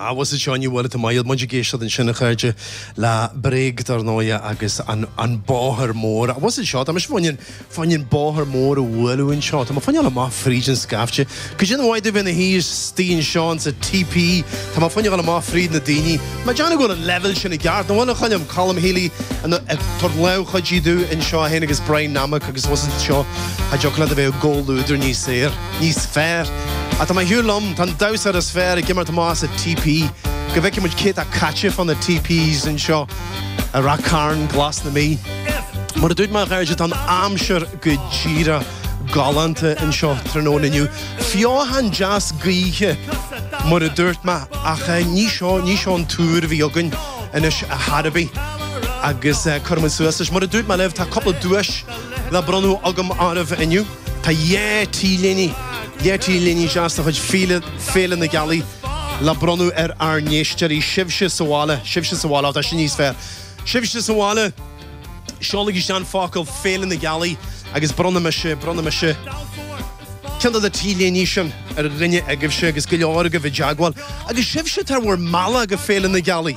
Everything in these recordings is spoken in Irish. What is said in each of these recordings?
Ah, mhuise seo, you were it in my youth. Muid ag éisteacht ansin, a chairde, le Bréag, dar ndóighe, agus an, an bóthar mór. Mhuise seo, tá mise fá choinne, fá choinne an bóthar mór a bhualadh anseo. Tá mé fá choinne ghabháil amach fríd an scaifte. Cad é an mhaith domh bheith i mo shuí istigh anseo ins an TP, tá mé fá choinne ghabháil amach fríd na daoine. Má déanann go bhfuil an leibhéal sin i gceart, nach bhfuil, a Choilm, Colm Healy, an, a, tabhairt lámh chuidithe domh anseo fhéin agus Brian Nammack agus mhuise seo, cha dtiocfadh leat a bheith i gcomhluadar níos fearr. níos fearr. Ach tá mé ag siúl liom, tá an damhsa is fearr ag imirt amach sa TP, go bhfeicfidh muid cé atá caite fá na TPs anseo i Ráth Chairn glas na Mí. Mar a dúirt mé a chairde, tá an aimsir go díreach galánta anseo tráthnóna inniu. Feothan deas gaoithe mar a dúirt mé, ach ní seo, ní seo an tuar a bhí againn anois a Harvey agus cuirfidh muid suas leis. Mar a dúirt mé libh, tá cúpla duais le bronnadh agam oraibh inniu. Tá dhá T-léine, dhá T-léine deasa de chuid Féile, Féile na Gealaí, le bronnadh ar ár n-éisteoirí. Sibhse sa bhaile, sibhse sa bhaile, ó tá sin níos fearr! Sibhse sa bhaile, seolaigí isteach an focal Féile na Gealaí agus bronnfaidh mise, bronnfaidh mise ceann de na T-léine sin ar dhuine agaibhse agus go leor agaibh i dteagmháil. Agus sibhse atá ar bhur mbealach go Féile na Gealaí,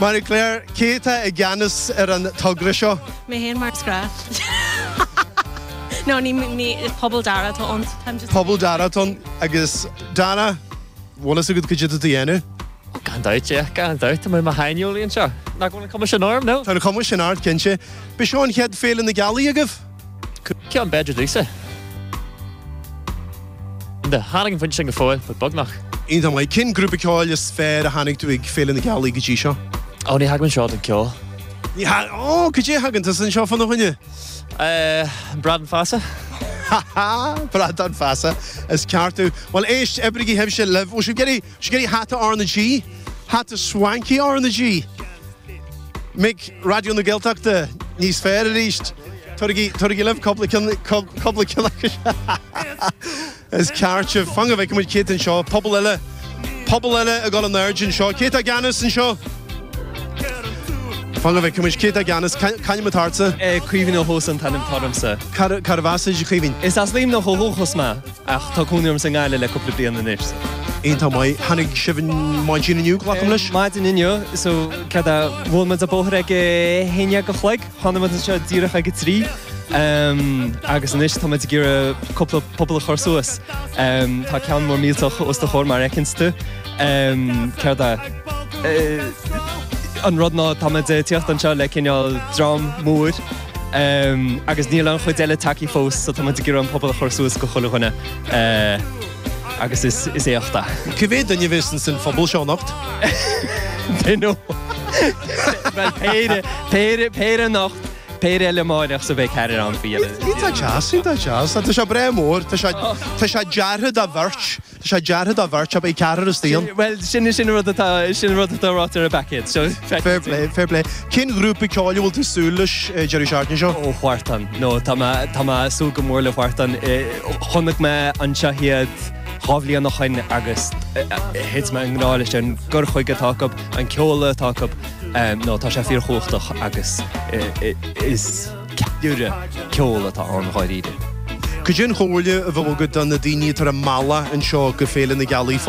Marie Claire, cé atá i gceannas ar an togra seo? Mé féin mar is gnách. No, ní, ní, is puball Dara atá ann, so táim just. Puball Dara atá ann agus Dara, bhfuil a fhios agat cad é atá tú a dhéanamh? Ó, gan dabht, yeah, gan dabht. Tá mé i mo shaineolaí anseo. Nach bhfuil an cuma sin orm, no? Tá an cuma sin ort, cinnte. Ab é seo an chéad Féile na Gealaí agaibh. Ceann beag de Lisa. Enda, tháinig an phointe sin go fóill, but beagnach. Iontach maith. Cén grúpa ceoil is fearr a chonaic tú ag Féile na Gealaí go dtí seo? Ó, ní thagaim anseo don ceol. Ní thag-. Ó, cad é a thagann tú anseo fána choinne? Eh, Bradán Feasa. Ha ha, Bradán Feasa, is ceart tú. Bhuel, éist, oibrigí sibhse libh. Ó, sibh, get a, seo duit hata RnaG. Hata swanky RnaG. Mic Raidió na Gaeltachta níos fearr arís. Tugaigí, tugaigí libh cúpla ceann, cúpla ceann acu. Is ceart sibh. Fan go bhfeicfidh muid cé atá anseo, puball eile, puball eile ag gabháil in airde anseo. Cé atá i gceannas anseo? Fan go bhfeicfidh muid cé atá i gceannas, c'ainm atá ortsa? Caoimhín Ó hÓsáin an t-ainm atá ormsa. Cárb as duit, a Chaoimhín? Is as Luimneach ó thús mé. Ach tá cónaí orm sa nGaillimh le cúpla bliain anois. Iontach maith. Tháinig sibh ar maidin inniu, glacaim leis? Maidin inniu, so céard, bhuail muid an bóthar ag a haon déag a chloig, tháinig muid anseo díreach ag a trí, agus anois tá muid ag iarraidh cúpla puball a chur suas. Tá ceann mór millteach os do chomhair mar a fheiceanns tú. Céard é an rud ná tá muid ag tíocht anseo le cineál dream mór. Agus níl an chuid eile tagthaí fós, so táimid ag iarraidh an puball a chur suas go chuile dhuine agus is éacht é. Cá mhéad duine a bheas ins an phuball seo anocht? They know. Bhuel, péire, péire, péire anocht, péire eile amárach so beidh ceathrar ann faoi dheireadh. Tá deas, tá deas. Tá sé breá mór. Tá sé, tá sé deartha do bheirt. Tá sé deartha do bheirt, ab é? Ceathrar is daon? Bhuel, sin, sin an rud atá, sin an rud atá ráite ar an bpaicéad, so feic. Fair play, fair play. Cén ghrúpa ceoil a bhfuil tú ag súil leis deireadh seachtaine seo? Ó Wharton, no, tá mé, tá mé ag súil go mór le Wharton. Chonaic mé anseo iad dhá bhliain ó shoin agus thit mé i ngrá leis an gcur chuige atá acub, an ceol atá acub, no, tá sé fíor chumhachtach agus is, Ceiliúradh ceoil atá ann dháiríre. Cad é an chomhairle a bheadh agat do na daoine atá ar a mbealach anseo go Féile na Gealaí?